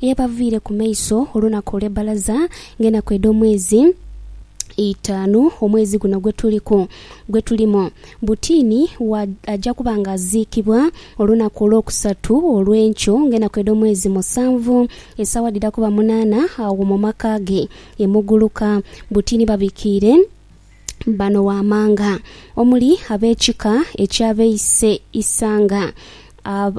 Yabaviire ku maiso olunaku olw'ebbalaza ng'enaku edh'omwezi eitaanu, omwezi guno gwe tuliku, gwe tulimu. Butini wa aja kuba ng'aziikibwa olunaku olwokusatu olw'enkyo ng'enaku edh'omwezi musanvu, esaawa dhidha kuba munaana agho mu maka ge e Muguluka. Butini babikiire bano waamanga omuli ab'ekika eky'abeise Isanga, ab.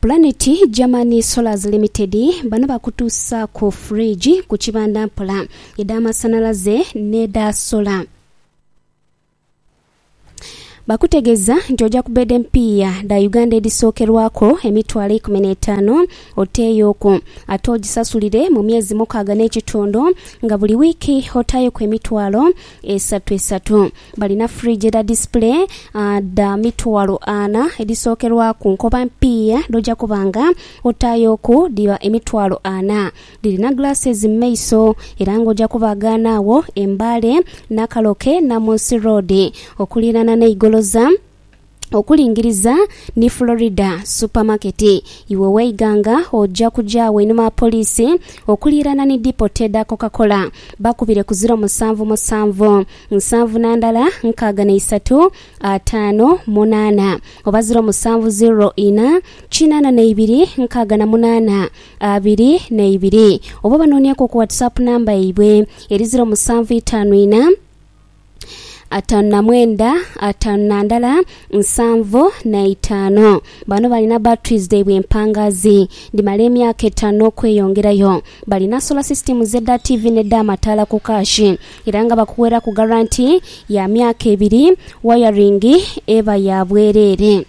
Planet German Solars Limited bano bakutuusaaku fridge ku kibanda mpola, edh'amasanhalaze n'edha sola. Bakutegeeza nti oja ku beeda empiiya dha Uganda edhisookerwaku emitwalo eikumi n'etaano oteeyooku ate ogisasulire mu myezi mukaaga n'ekitundu nga buli wiiki otaayoku emitwalo Esatu esatu. Balina fridge edha display dha mitwalo ana edhisookerwaku nkoba mpiiya dh'oja kuba nga otaayoku dhiba emitwalo ana. Dhirina glasses mu maiso era ng'oja kuba gaana agho e Mbale, Nakaloke, Namunsi Road okuliirana n'eigoloza. okulingiriza ni Florida Supermarket. Iwe weiga nga oja kuja agho einhuma gha poliisi okuliirana ni depot edha Coca-Cola. Bakubire ku ziro musanvu musanvu, nsanvu na ndala nkaaga na isatu, ataano, munaana, oba ziro musanvu ziro ina, kinaana na ibiri, nkaaga na munaana, abiri na ibiri. Oba obanoonieku ku WhatsApp namba yaibwe eri ziro musanvu itaanu ina, ataanu na mwenda, ataanu na ndala, nsanvu na itaanu. Bano balina batteries dhaibwe empangaazi dhimala emyaka etaanu n'okweyongerayo. Balina solar systems edha TV n'edh'amataala ku kaashi era nga bakugheraku garanti ya myaka ebiri, wayaringi eba ya bwereere.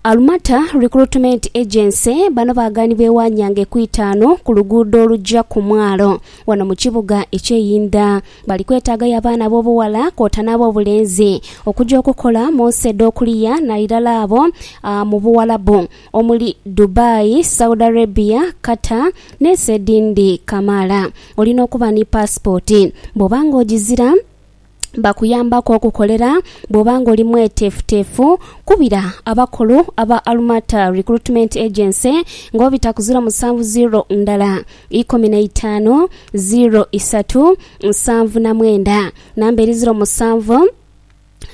Alumata Recruitment Agency bano baaganibwa ewa Nyange ku itaanu ku luguudo olugya ku mwalo wano mu kibuga eky'e Inda. Bali kwetaagayo abaana ab'obughala kwota n'ab'obulenzi okugya okukola mu nsi edh'okuliya nairala abo ah, mu Buwalabu omuli Dubai, Saudi Arabia, Qatar n'ensi edhindi kamaala. Olina okuba ni paasipooti. Bw'oba ng'ogizira, bakuyambaku okukolera bw'oba ng'oli mweteefuteefu. Kubira abakulu aba Almata Recruitment Agency ng'obita ku ziro musanvu ziro ndala ikumi na itaanu ziro isatu nsanvu na mwenda, namba eri ziro musanvu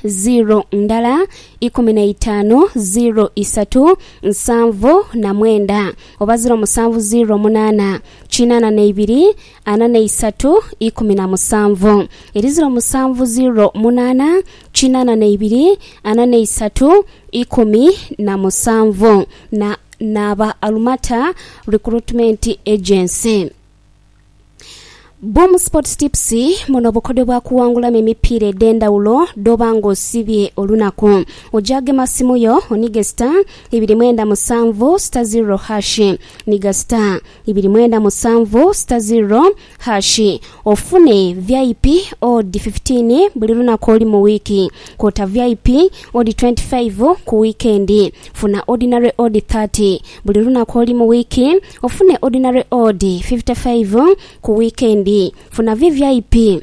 ziro ndala ikumi na itaanu ziro isatu nsanvu na mwenda oba ziro musanvu ziro munaana kinaana na ibiri. ana n'eisatu ikumi na musanvu eri ziro musanvu ziro munaana kinaana n'eibiri ana n'eisatu ikumi na musanvu na n'aba Alumata Recruitment Agency. Boom Sports Tips, Muno bukodyo bwa kuwangulamu emipiira edh'endhawulo dh'oba ng'osibye olunaku. Oja gema simu yo onige star ibiri mwenda musanvu star ziro hashi niga star. Ibiri mwenda musanvu sita ziro hashi ofune vip odi fifitiini buli lunaku ori mu wiiki, kwota vip odi twenti faivu ku wiikendi. Funa odinare odi thati buli lunaku ori mu wiiki, ofune odinare odi fifite faivu ku wiikendi. Funa vvip.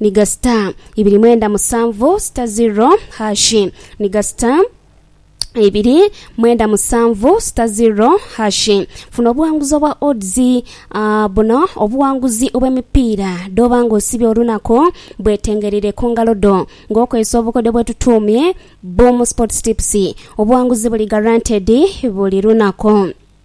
Ni ga sita ibiri mwenda musanvu sita ziro hashi Ni ga sita ibiri mwenda musanvu sita ziro hashi Funa obuwanguzi obwa odds a Buno obuwanguzi obw'emipiira dh'oba nga osibye olunaku bwetengeraire ku ngalo dho nga okozesa obukodyo bwetutuumye Boom Sports Tips. Obuwanguzi buli guaranteed buli lunaku.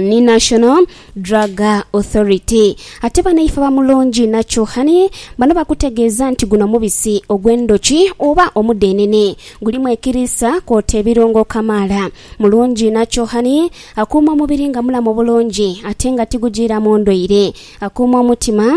ni National Drug Authority. Ate banaife aba Mulungi Natural Honey bano bakutegeeza nti guno mubisi ogw'endhoki oba omudhenene. Gulimu ekiriisa kwoota ebirungo kamaala. Mulungi Natural Honey akuuma omubiri nga mulamu bulungi ate nga tigujiiramu ndwaire. Akuuma omutima.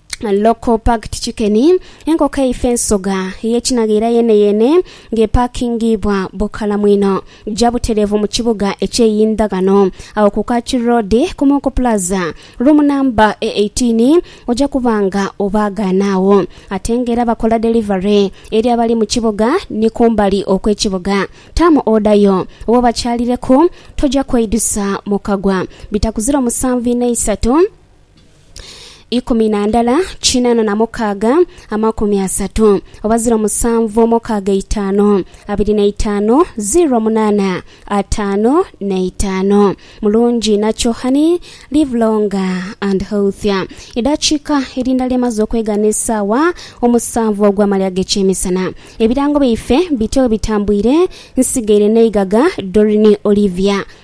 Local Parked Chicken, Enkoko eifa ensoga ey'ekinaghaira yeeneyeene nga epaakingiibwa bukalamu inho gya butereevu mu kibuga eky'e Yindhaghano agho ku Kaki Road ku Muku Plaza, room number e eighteen, oja kuba nga obaagaana agho. Ate nga era bakola delivery eri abali mu kibuga ni kumbali okw'ekibuga. Taamu order yo oba obakyalireku, toja kweidusa mu kagwa. Bitakuzira omusanvu inho eisatu. ikumi na ndala kinana na mukaaga amakumi asatu oba ziro musanvu omukaaga eitaanu abiri n'eitaanu ziro munaana ataanu n'eitaanu. Mulungi inakyo honey live longer and healthier. Edhakiika erindala emaze okwegana esaawa omusanvu ogw'amalya g'ekyemisana. Ebirango byaife bityo bwebitambwire nsigaire n'eigaga Doreen Olivia